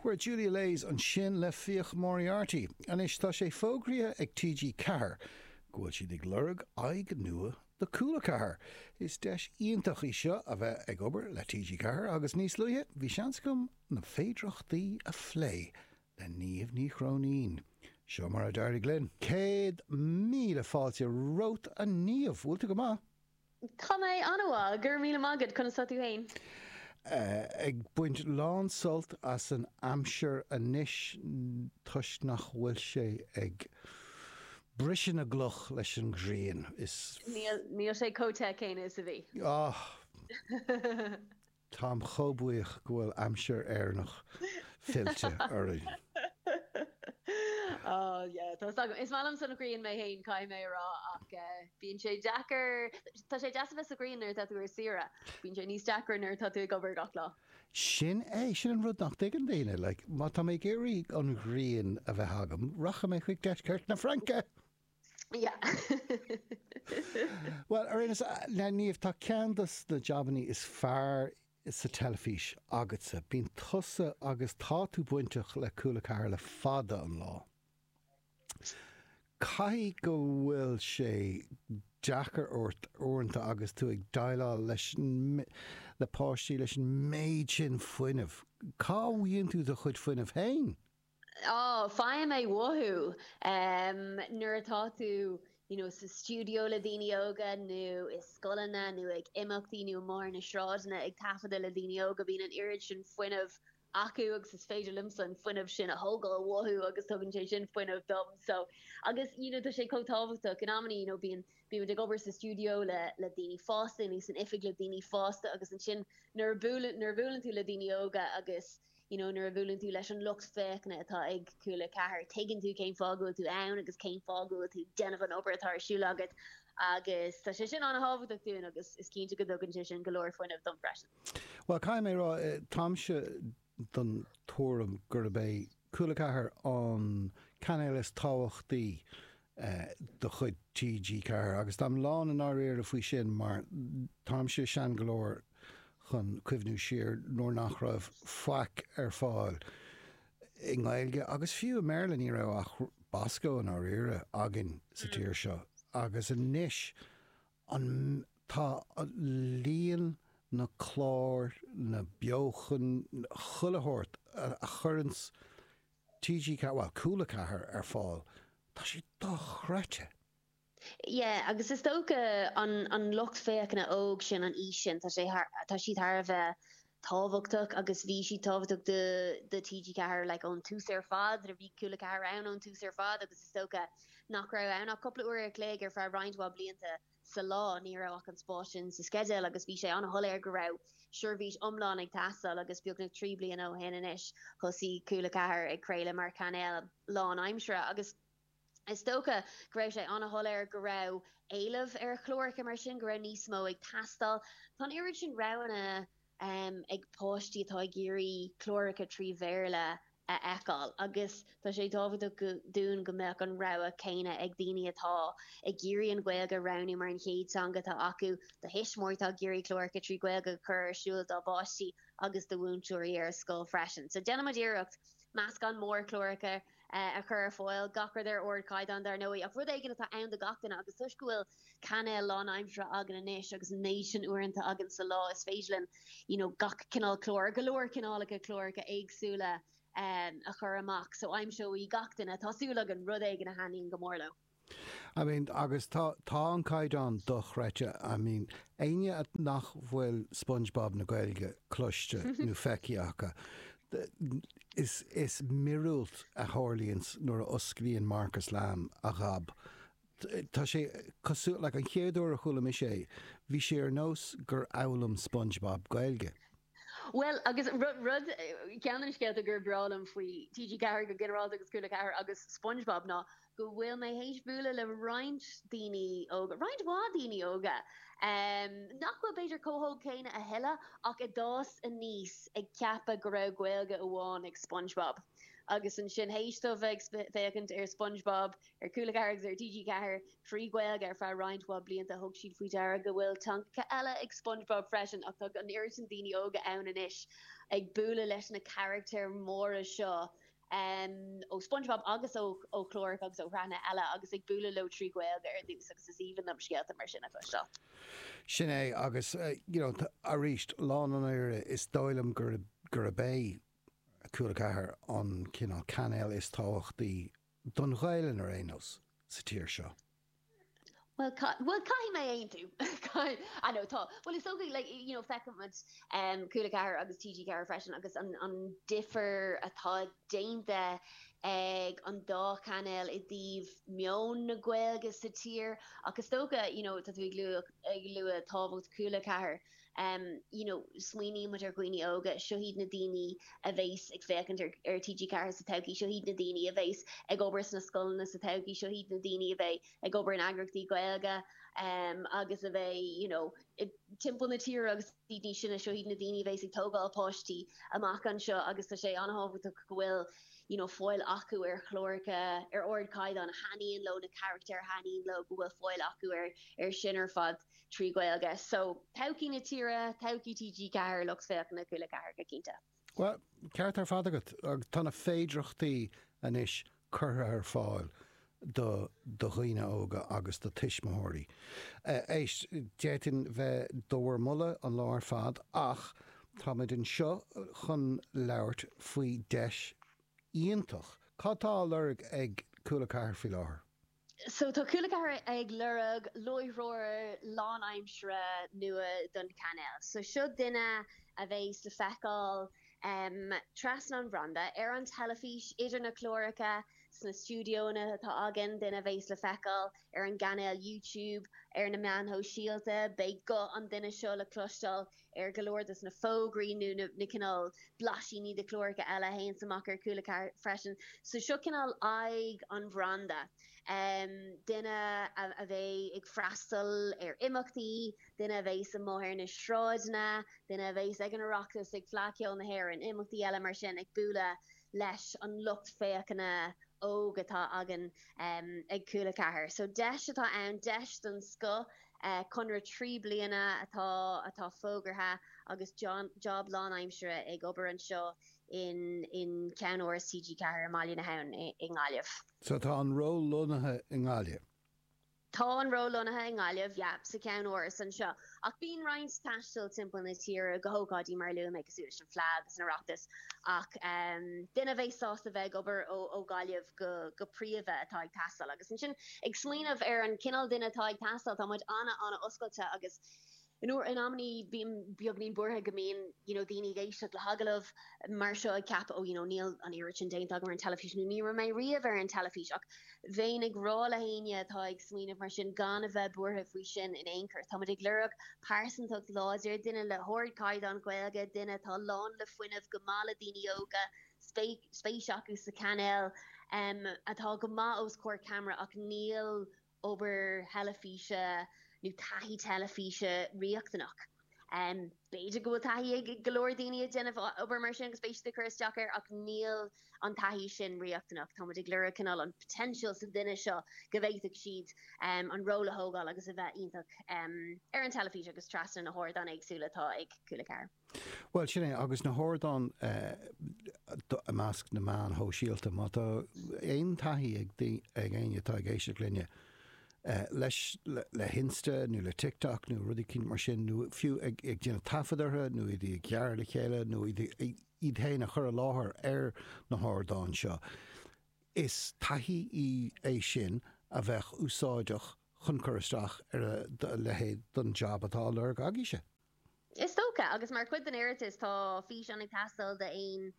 Chuir Julia Leys ansin le Fiach Moriarty. Anois tá sé fógraithe ag TG4 go bhfuil siad ag lorg aghaidh nua do Cúla 4. Is deis iontach í seo a bheith ag obair le TG4 agus níos luaithe bhí seans agam na féidearthachtaí a phlé le Niamh Ní Chróinín. Seo mar a d'éirigh linn. Céad míle fáilte romhat a Niamh! Bhfuil tú go maith? Tá mé an-mhaith, go raibh míle maith agat, conas tá tú féin? Ag baint lán-sult as an aimsir anois toisc nach bhfuil sé ag briseadh na gcloch leis an ghrian. Níl sé chomh te céanna is a bhí. Táim chomh buíoch go bhfuil aimsir Éireannach fillte orainn. Oh yeah, tá 'fhios agam. Is maith liomsa an ghrian mé fhéin, caithfidh mé a rá, ach bíonn sé deacair, tá sé deas a bheith sa ngrian nuair atá tú ar saoire, bíonn sé níos deacra nuair atá tú ag obair gach lá. Sin é, sin an rud nach dtuigeann daoine, like, má tá mé ag iarraidh an ghrian a bheith agam, rachaidh mé chuig deisceart na Fraince! Bhuel, ar aon nós, Niamh, tá ceann de na jabanna is fearr sa teilifís agatsa. Bíonn tusa agus tá tú bainteach le Cúla 4 le fada an lá. Caithfidh go bhfuil sé deacair ort, uaireanta, agus tú ag déileáil le le páistí, leis an méid sin fuinnimh. Cá bhfaigheann tú do chuid fuinnimh féin? Á, faighim é uathu nuair atá tú you know sa stiúideo le daoine óga nó i scoileanna nó ag imeachtaí nó amuigh ar na sráideanna ag taifeadadh le daoine óga, bíonn an oiread sin fuinnimh acu agus is féidir liomsa an fuinneamh sin a thógáil uathu agus tugann sé sin fuinneamh dom so agus you know tá sé chomh tábhachtach in amannaí you know bíonn bímid ag obair sa stiúideo le le daoine fásta nó san oifig le daoine fásta agus ansin nuair a buaileann nuair a bhuaileann tú le daoine óga agus You know, nuair a bhuaileann tú leis an lucht féachana atá ag Cúla 4, tuigeann tú cén fáth go bhfuil tú ann agus cén fáth go bhfuil tú ag déanamh an obair atá ar siúl agat, agus tá sé sin an-tábhachtach dúinn agus is cinnte go dtugann sé sin go leor fuinnimh dom freisin. Bhuel, caithfidh mé a rá, táimse den tuairim gurb é Cúla 4 an cainéal is tábhachtaí de chuid TG4, agus táim lán dáiríre faoi sin mar táimse sean go leor chun cuimhniú siar nuair nach raibh faic ar fáil i nGaeilge agus fiú i mBéarla, ní raibh ach Bosco, i ndáiríre, againn sa tír seo agus anois. An Tá líon na gclár, na beochain, chuile shórt a chuireanns TG bhuel, Cúla 4 ar fáil, tá sé dochreidte! Yeah, agus is dócha an an lucht féachana óg sin, an aois sin, tá sé thar tá siad thar a bheith tábhachtach agus bhí siad tábhachtach do do TG4 like ón tús ar fad nuair a bhí Cúla 4 ann ón tús ar fad agus is dócha nach raibh ann ach cúpla uair a chloig ar feadh roinnt mhaith blianta sa lá ní raibh ach an spás sin sa sceideal agus bhí sé an-shoiléir go raibh seirbhís iomlán ag teastáil agus beagnach trí bliana ó shin anois thosaigh Cúla 4 ag craoladh mar chainéal lánaimseartha agus Is dócha go raibh sé an-shoiléir go raibh éileamh ar chláracha mar sin, go raibh níos mó ag teastáil. Tá an oiread sin roghanna ag páistí atá ag iarraidh cláracha trí Bhéarla a fheiceáil agus tá sé tábhachtach dúinn go mbeadh an rogha céanna ag daoine atá ag iarraidh an Ghaeilge a roghnú mar an chéad teanga atá acu, do thuismitheoirí atá ag iarraidh cláracha trí Ghaeilge a chur ar siúl dá bpáistí agus do mhúinteoirí ar scoil freisin. So déanaimid iarracht meascán mór cláracha. a chur ar fáil, gach rud ar ardchaighdeán dar ndóigh, ach rud éigin atá ann do gach duine agus toisc go bhfuil cainéal lánaimseartha againn anois agus an méid sin uaireanta againn sa lá is féidir linn you know gach cineál clár, or go leor cineálacha cláracha éagsúla, a chur amach. So aimseoidh gach duine, tá súil againn, rud éigin a thaitníonn go mór leo. I mean, agus tá, tá an caighdeán dochreidte. I mean, éinne nach bhfuil Spongebob na Gaeilge cloiste nó feicthe acu, is, is miorúilt a tharlaíonns nuair a osclaíonn Marcus Lamb a ghab. Tá sé cosúil, like an chéad uair a chuala mise é, bhí sé ar nós gur fhoghlaim Spongebob Gaeilge. Bhuel, agus ceann de na scéalta gur breá liom faoi TG4 go ginearálta agus Cúla 4 agus Spongebob ná, go bhfuil mé théis bualadh le roinnt daoine óga, roinnt mhaith daoine óga, nach bhfuil b'fhéidir chomh hóg céanna a thuilleadh, ach a d'fhás aníos ag ceapadh go raibh Gaeilge amháin ag Spongebob. Agus ansin, théis dóibh bheith ag féachaint ar Spongebob ar Cúla 4 agus ar TG4 trí Ghaeilge ar feadh roinnt mhaith blianta, thug siad faoi deara go bhfuil teangacha eile ag Spongebob freisin, ach tá an oiread sin daoine óga ann anois ag bualadh leis na carachtair mhóra seo, em, ó Spongebob agus ó, ó chláracha agus ó shraitheanna eile agus ag bualadh leo trí Ghaeilge ar dtús agus is aoibhinn liom scéalta mar sin a chloisteáil. Sin é agus eh, you know, arís, lán dáiríre, is dóigh liom gur, gurb é Cúla 4 an cineál cainéal is tábhachtaí don Ghaelainn ar aon nós sa tír seo. Bhuel, bhuel, caithfidh mé aontú, caithfidh, I know, tá, bhuel, is dócha, like, you know, feicfidh muid Cúla 4 agus TG4 freisin agus an, an difear atá déanta ag an dá chainéal i dtaobh meon na Gaeilge sa tír, ach is dócha, you know, tá tú ag lua, ag lua tábhacht Cúla 4, you know smaoiníonn muid ar dhaoine óga, seo iad na daoine a bheas ag féachaint ar ar TG4 sa todhchaí, seo iad na daoine a bheas ag obair sna scoileanna sa todhchaí, seo iad na daoine a bheidh ag obair in eagraíochtaí Gaeilge em agus a bheidh you know timpeall na tíre agus iad níos sine, seo iad na daoine a bheas ag tógáil páistí amach anseo agus tá sé an-tábhachtach go bhfuil you know fáil acu ar chláracha ar ardchaighdeán a thaitníonn leo, na carachtair a thaitníonn leo, go bhfuil fáil acu ar ar sin ar fad. trí Ghaeilge. So, todhchaí na tíre, todhchaí TG4, lucht féachana Cúla 4 go cinnte. Bhuel, ceart ar fad agat. Tá na féidireachtaí anois curtha ar fáil do dhaoine óga agus do tuismitheoirí. Éist, d'fhéadfainn bheith do bhur moladh an lá ar fad ach táimid anseo chun labhairt faoi deis iontach. Cad tá á lorg ag Cúla 4 faoi láthair? So tá Cúla 4 ag lorg láithreoir lánaimseartha nua don chainéal. So seo duine a bheas le feiceáil trasna an bhranda ar an teilifís, idir na cláracha, sna stiúideonna atá againn, duine a bheas le feiceáil ar an gcainéal YouTube, ar na meáin shóisialta. Beidh guth an duine seo le cloisteáil ar go leor de na fógraí nó na cineál blaisíní de chláracha eile a théanns amach ar Cúla 4 freisin. So seo cineál aghaidh an bhranda. Duine a bheidh ag freastal ar imeachtaí, duine a bheas amuigh ar na sráideanna, duine a bheas ag an Oireachtas, ag Fleadh Cheoil na hÉireann, imeachtaí eile mar sin, ag bualadh leis an lucht féachana óg atá againn ag Cúla 4 so deis atá ann, deis den scoth, conradh trí bliana atá atá fógartha agus job lánaimsire ag obair anseo in in ceannáras TG4 i mBaile na hAbhann i nGaillimh. So tá an ról lonnaithe i nGaillimh. Tá an ról lonnaithe i nGaillimh, yep, sa cheannáras anseo, ach bíonn roinnt taistil timpeall na tíre go hócáidí mar a luaigh mé, cosúil leis an Fleadh agus an Oireachtas, ach duine a bheidh sásta bheith ag obair ó Ghaillimh go príomha atá ag teastáil. Agus ansin, ag smaoineamh ar an chineál duine atá ag teastáil, tá muid ana-ana-oscailte agus, In amannaí, bím beagainín buartha go mbíonn you know daoine ag éisteacht le hagallamh mar seo ag ceapadh oh you know níl an oiread sin déanta agam ar an teilifís nó ní raibh mé riamh ar an teilifís ach bheinn ag rá le héinne atá ag smaoineamh mar sin gan a bheith buartha faoi sin in aon chor. Tá muid ag lorg pearsantacht láidir, duine le hardchaighdeán Gaeilge, duine atá lán le fuinneamh, go maith le daoine óga, spéis acu sa chainéal, atá go maith os comhair ceamara ach níl obair theilifíse nó taithí teilifíse riachtanach. B'fhéidir go bhfuil taithí ag go leor daoine ag déanamh obair mar sin agus beidh siad ag cur isteach air ach níl an taithí sin riachtanach. Táimid ag lorg cineál an potential sa duine seo go bhféadfadh siad an ról a thógáil agus a bheith iontach ar an teilifís agus trasna na n-ardán éagsúla atá ag Cúla 4. Bhuel, sin é, agus na hardáin i measc na meáin shóisialta, má tá aon taithí ag éinne atá ag éisteacht linne, leis, le hInsta nó le TikTok nó rudaí eicínt mar sin, nó fiú ag déanamh taifead orthu nó iad a ghearradh le chéile nó iad féin a chur i láthair ar na hardáin seo, is taithí í é sin a bheadh úsáideach chun cur isteach ar a leithéid den jab atá á lorg agaibhse. Is dócha, agus mar chuid den iarratas tá físeán ag teastáil d'aon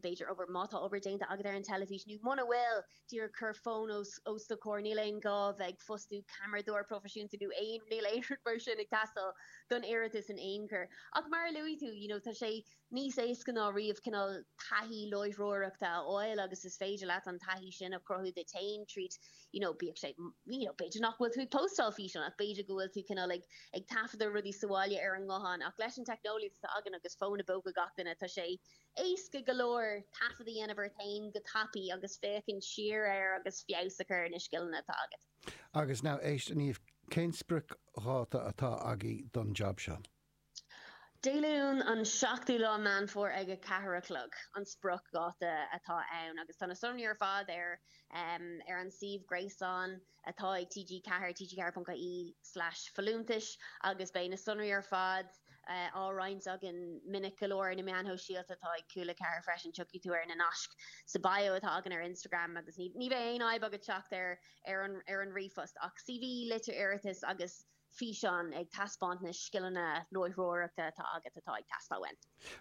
b'fhéidir, obair, má tá obair déanta agat ar an teilifís, nó muna bhfuil, díreach cuir fón os do comhair, níl aon gá bheith ag fostú ceamaradóir proifisiúnta nó aon, níl aon rud mar sin ag teastáil don iarratas in aon chor. Ach mar a luaigh tú, you know, tá sé, níos éasca ná riamh cineál taithí láithreoireachta a fháil agus is féidir leat an taithí sin a chruthú duit féin tríd you know bíodh sé you know b'fhéidir nach bhfuil tú ag póstáil físeán ach b'fhéidir go bhfuil tú cineál ag ag taifeadadh rudaí sa bhaile ar an nguthán ach leis an teicneolaíocht atá againn agus fón i bpóca gach duine tá sé éasca go leor taifead a dhéanamh ort féin go tapaidh agus féachaint siar air agus feabhas a chur ar na scileanna atá agat. Agus now éist Niamh, cén spriocdháta atá agaibh don job seo? Dé Luain an 7ú lá Meán Fómhair ag a ceathair a chlog an spriocdháta atá ann agus tá na sonraí ar fad ar ar an suíomh gréasáin atá ag TG4, tg4.ie/folúntais, agus beidh na sonraí ar fad á roinnt againn minic go leor ar na meáin shóisialta atá ag Cúla Ceathair freisin, tiocfaidh tú ar na naisc sa bio atá againn ar Instagram agus ní ní bheidh aon fhadhb agat teacht ar ar an ar an ríomhphost ach CV, litir iarratais agus. físeán ag taispeáint na scileanna láithreoireachta atá agat atá ag teastáil uainn.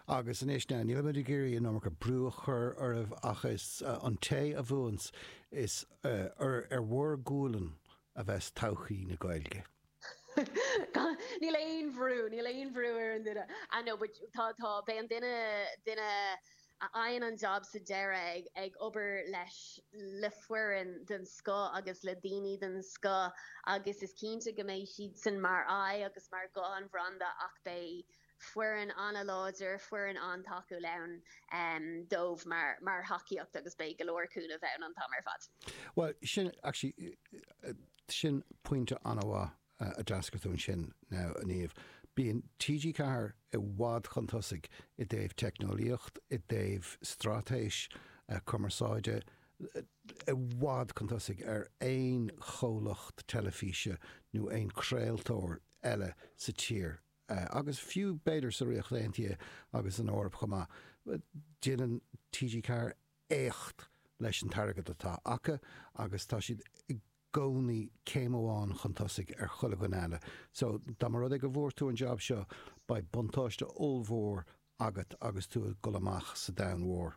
Agus anois now, nílimid ag iarraidh an iomarca brú a chur oraibh ach is an té a bhuanns, is ar bhur gualainn a bheas todhchaí na Gaeilge. Níl aon bhrú, níl aon bhrú ar aon duine. I know but tá, tá, beidh an duine, duine. a fhaigheann an jab sa deireadh, ag obair leis le foireann den scoth agus le daoine den scoth agus is cinnte go mbeidh siadsan mar aghaidh agus mar ghuth an bhranda ach beidh foireann an-láidir, foireann an-tacúil ann dóibh mar thacaíocht agus beidh go leor cúnaimh ann an t-am ar fad. Bhuel, sin, actually, sin pointe an-mhaith. a d'fhreagair tú ansin, now, a Niamh. Bíonn TG4 i bhfad chun tosaigh i dtaobh teicneolaíocht, i dtaobh straitéis cumarsáide, i bhfad chun tosaigh ar aon chomhlacht teilifíse nó aon chraoltóir eile sa tír agus fiú b'fhéidir sa Ríocht Aontaithe agus san Eoraip chomh maith. Déanann TG4 éacht leis an t-airgead atá acu agus tá siad i gcónaí céim amháin chun tosaigh ar chuile dhuine eile. So, dá mba rud é go bhfuair tú an jab seo, beidh buntáiste ollmhór agat agus tú ag dul amach sa domhan mhór.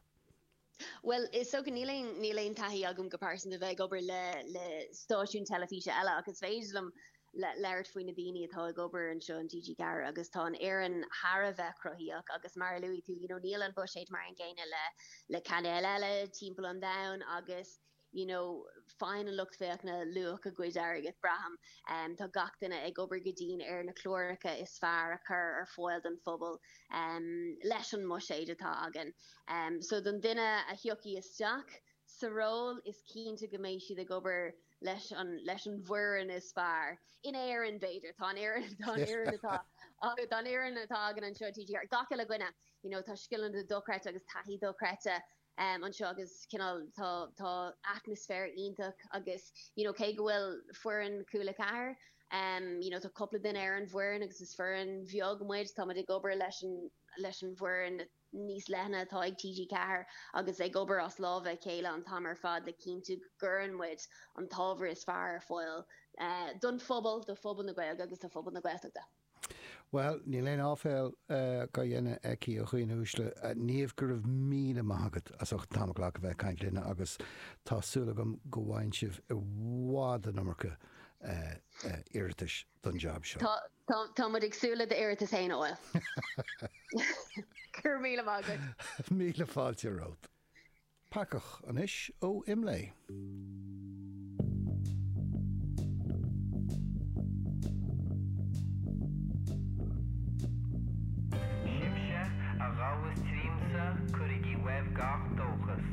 Bhuel, is dócha, níl aon, níl aon taithí agam go pearsanta bheith ag obair le, le stáisiún teilifíse eile ach is féidir liom, le labhairt faoi na daoine atá ag obair anseo in TG4 agus tá an fhoireann thar a bheith cruthaíoch agus mar a luaigh tú you know níl an buiséad mar an gcéanna le le cainéil eile timpeall an domhain agus you know faigheann an lucht féachana luach a gcuid airgid braithim um, tá gach duine ag obair go dian ar na cláracha is fearr a chur ar fáil don phobal um, leis an mbuiséad atá againn um, so don duine a thiocfaidh isteach sa ról is cinnte go mbeidh siad ag obair leis an bhfoireann is fearr, in Éirinn, b'fhéidir, tá an fhoireann, tá an fhoireann atá, tá an fhoireann atá againn anseo, TG4, ar gach uile dhuine, you know, tá scileanna dochreidte agus taithí dochreidte ehm anseo agus cineál, tá, tá atmaisféar iontach agus, you know, cé go bhfuil foireann Chúla4, ehm, you know, tá cúpla duine ar an bhfoireann agus is foireann bheag muid, tá muid ag obair leis an, leis an bhfoireann, níos leithne atá ag TG4 agus ag obair as lámha a chéile an t-am ar fad le cinntiú go gcuireann muid an t-ábhar is fearr ar fáil don phobal, do phobal na Gaeilge agus do phobal na Gaeltachta. Bhuel, níl aon áiféal dá dhéanamh aici, a dhaoine uaisle. Niamh, go raibh míle maith agat as ucht an t-am a ghlacadh a bheith ag caint linne agus tá súil agam go bhfaigheann sibh i bhfad an iomarca iarratais don jab seo. Tá. Tá tá muid ag súil le d'iarratas féin, a Fháil. Go raibh míle maith agat. Míle fáilte romhat. Peacach anois ó Imlé. Sibhse a ghabhas tríomsa, cuirigí uaibh gach dóchas.